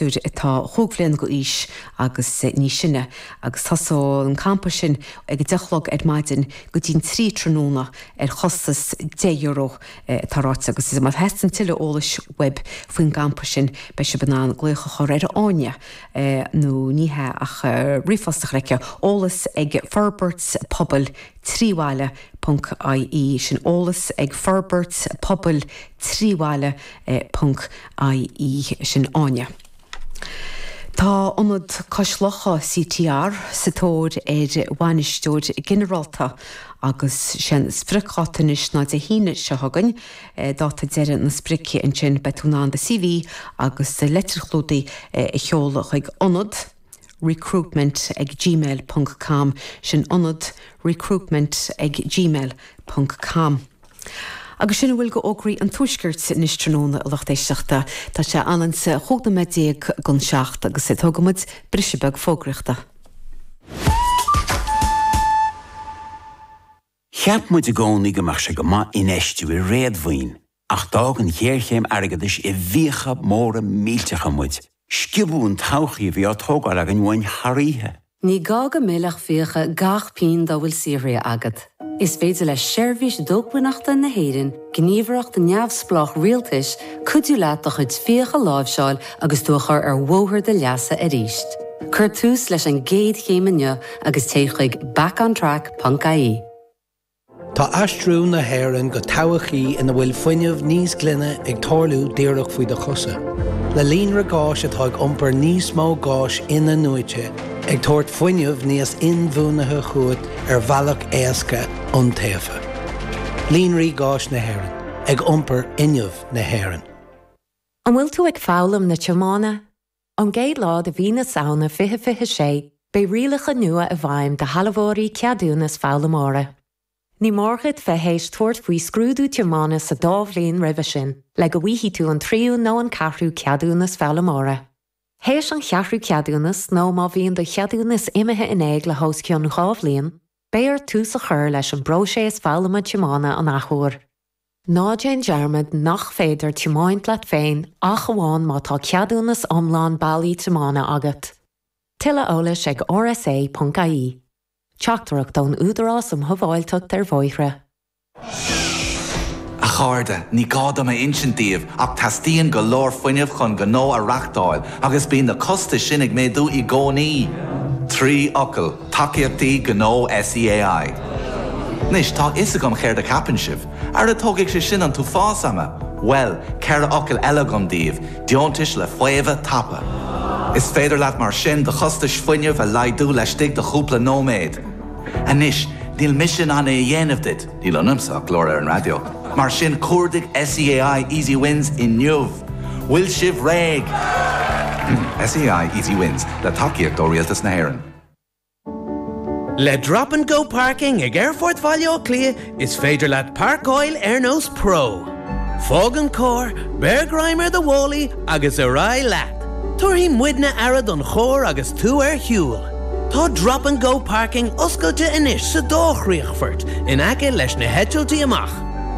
atá chúig bliana d'aois agus níos sine agus tosóidh an campa sin ag a deich a chlog ar maidin go dtí'n trí tráthnóna ar chostas deich euro atá ráite agus má theastaíonn tuilleadh eolais uaibh faoin gcampa sin beidh sibh in ann glaoch a chur ar Áine nó ní hea ach ríomhphost a chur chuici, eolas ag Forbairt Pobail Trí Bhaile ponc IE, sin eolas ag Forbairt Pobail trí bhaile ponc IE sin Áine. Tá Ionad Cois Locha CTR, sa tóir ar bhainisteoir ginearálta agus sé an spriocdháta anois ná Dé hAoine seo chugainn, dáta deireadh na sprice ansin beidh tú in ann do CV agus do litir chlúdaigh a sheoladh chuig Ionad recruitment ag gmail ponc com sin Ionad recruitment ag gmail ponc com. Agus sin a bhfuil d'fhógraí an Tuaiscirt anois tráthnóna a lucht éisteachta. Tá sé ionann is a naoi déag chun a seacht agus é tógfaidh muid briseadh beag fógraíochta. Cheap muid i gcónaí go mbeadh sé go maith infheistiú i réadmhaoin ach d'fhág an ghéarchéim airgeadais i bhfiacha móra millteacha muid Sciobadh an todhchaí a bhí á tógáil againn uainn thar oíche. Ní gá go millfeadh fiacha gach pingin dá bhfuil saothraithe agat. Is féidir le Seirbhís Dhócmhainneachta na hÉireann, gníomhaireacht neamhspleách rialtais, cuidiú leat do chuid fiach a láimhseáil agus tú a chur ar bhóthar do leasa arís. Cuir tús leis an gcéad chéim inniu agus téigh chuig backontrack.ie. Tá aistriú na hÉireann go todhchaí ina bhfuil fuinneamh níos glaine ag tarlú díreach faoi do chosa, le líonra gáis atá ag iompar níos mó gáis in-athnuaite, ag tabhairt fuinneamh níos inbhuanaithe chugat ar bhealach éasca, iontaofa. Líonraí Gáis na hÉireann, ag iompar fhuinneamh na hÉireann. An bhfuil tú ag foghlaim na tiomána? Ón gcéad lá de mhí na Samhna 2026, beidh rialacha nua i bhfeidhm do shealbhóirí ceadúnas foghlaimeora. Ní mór duit a bheith théis tabhairt faoi scrúdú tiomána sa dá bhliain roimhe sin le go bhfaighidh tú an tríú nó an ceathrú ceadúnas foghlaimeora. Théis an cheathrú ceadúnas nó má bhíonn do cheadúnas imithe in éag le hos cionn dhá bhliain, beidh ort tús a chur leis an bpróiseas foghlama tiomána an athuair. Ná déan dearmad nach féidir tiomáint leat féin ach amháin má tá ceadúnas iomlán bailí tiomána agat. Tuilleadh eolais ag rsa.ie. Teachtaireacht ón Údarás um Shábháilteacht ar Bhóithre. A chairde, ní gá dom a insint díbh ach teastaíonn go leor fuinnimh chun gnó a reachtáil agus bíonn na costais sin ag méadú i gcónaí. Trí fhocal. Tacaíochtaí Gnó SEAI. Anois, tá a fhios agam céard a cheapann sibh. Ara tógfaidh sé sin an t-uafás ama! Bhuel, ceithre fhocal eile agam daoibh, deontais le faomhadh tapa. Is féidir leat mar sin do chostais fuinnimh a laghdú laistigh de chúpla nóiméad. Anois, níl mise in ann é a dhéanamh duit, níl ionamsa ach glór ar an raidió, mar sin cuardaigh SEAI Easy Wins inniu! Bhfuil sibh réidh? SEAI Easy Wins, le tacaíocht ó Rialtas na hÉireann. Le Drop and Go Parking ag Aerfort Bhaile Átha Cliath is féidir leat páirceáil ar nós pro. Fág an cór, beir greim ar do mhálaí agus ar aghaidh leat! Tabharfaidh muidne aire don chór agus tú ar shiúl. Tá Drop and Go Parking oscailte anois sa dá chríochfort in aice leis na heitiltí amach.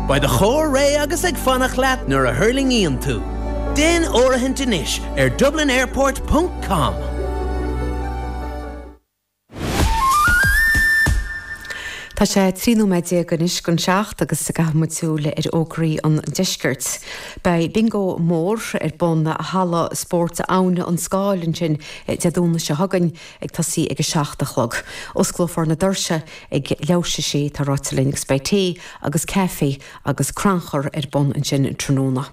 Beidh do chór réidh agus ag fanacht leat nuair a thuirlingíonn tú. Déan áirithint anois ar dublinairport. com. Tá sé trí nóiméad déag anois go seacht agus caithfidh muid súil ar fhógraí an Deiscirt. Beidh bingo mór ar bun in Halla Spóirt Abhainn an Scáil ansin Dé Domhnaigh seo chugainn ag tosaí ag a seacht a chlog. Osclófar na doirse ag leath tar éis a sé, tá ráite linn agus beidh tae agus caife agus crannchur ar bun ansin tráthnóna.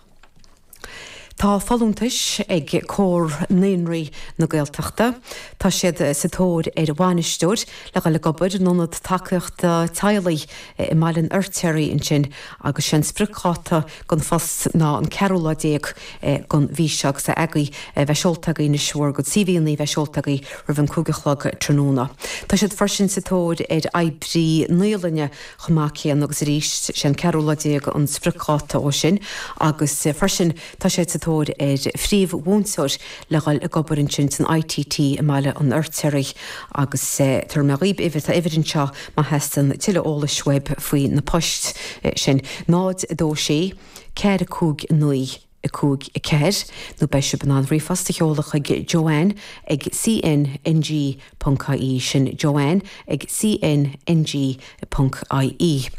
Tá folúntais ag Comhar Naíonraí na Gaeltachta. Tá siad sa tóir ar bhainisteoir le dhul ag obair in Ionad Tacaíochta Teaghlaigh i mBaile an Fheirtéaraigh ansin agus 'sé an spriocdháta don phost ná an ceathrú lá déag den mhí seo agus caithfidh a bheith seolta agaibh anois bhur gcuid CVanna a bheith seolta agaibh roimh an cúig a chlog tráthnóna. Tá siad freisin sa tóir ar oibrí naíolainne. chomh maith céanna agus arís. Sé an ceathrú lá déag an spriocdháta dó sin agus freisin tá siad sa tóir ar phríomh-mhúinteoir le dhul ag obair ansin san ITT i mBaile an Fheirtéaraigh agus tabharfaidh mé dhaoib uimhir, tá uimhir anseo má theastaíonn tuilleadh eolais uaib faoi na poist sin, 0 2 6 4 5 9. 5, 4, nó beidh sibh in ann ríomhphost a sheoladh chuig Joanne ag CNNG ponc IE, sin Joanne ag CNNG ponc IE.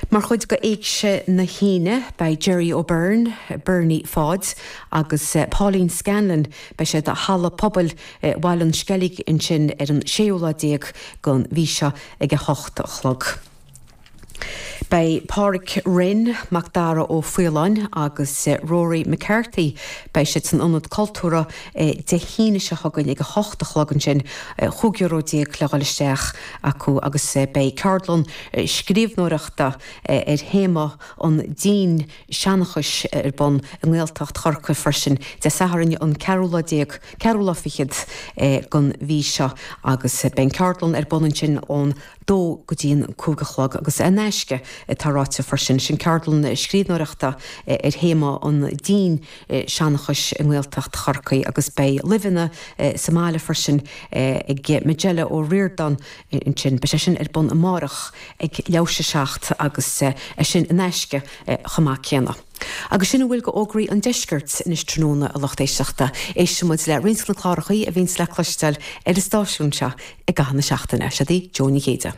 Mar chuid de Éigse na hAoine, beidh Gerry O'Beirne, Bernie Pháid, agus Pauline Scanlon, beidh siad i Halla Pobail Bhaile an Sceilg ansin ar an séú lá déag den mhí seo ag a hocht a chlog. Beidh Pádraic Rinn, Macdara Ó Faoláin agus Rory McCarthy, beidh siad san Ionad Cultúrtha Dé hAoine seo chugainn ag a hocht a chlog ansin, cúig euro déag le dhul isteach acu agus beidh ceardlann scríbhneoireachta ar théama an dinnseanchais ar bun i nGaeltacht Chorcaí freisin Dé Sathairn an ceathrú lá déag, ceathrú lá fichead den mhí seo agus beidh an cheardlann ar bun ansin ón dó go dtí an cúig a chlog agus é in aisce, atá ráite freisin. Sin ceardlann scríbhneoireachta ar théama an dinnseanchais i nGaeltacht Chorcaí agus beidh luibheanna sa mbaile freisin ag Majella O'Riordan ansin. Beidh sé sin ar bun amárach ag leathuair tar éis a seacht agus é sin in aisce chomh maith céanna. Agus sin a bhfuil dho fhógraí an Deiscirt anois tráthnóna a lucht éisteachta. Éistfidh muid le roinnt de na clárachaí a bhíonns le cloisteáil ar an stáisiún seo i gcaitheamh na seachtaine. Seo í Jó Ní Chéide.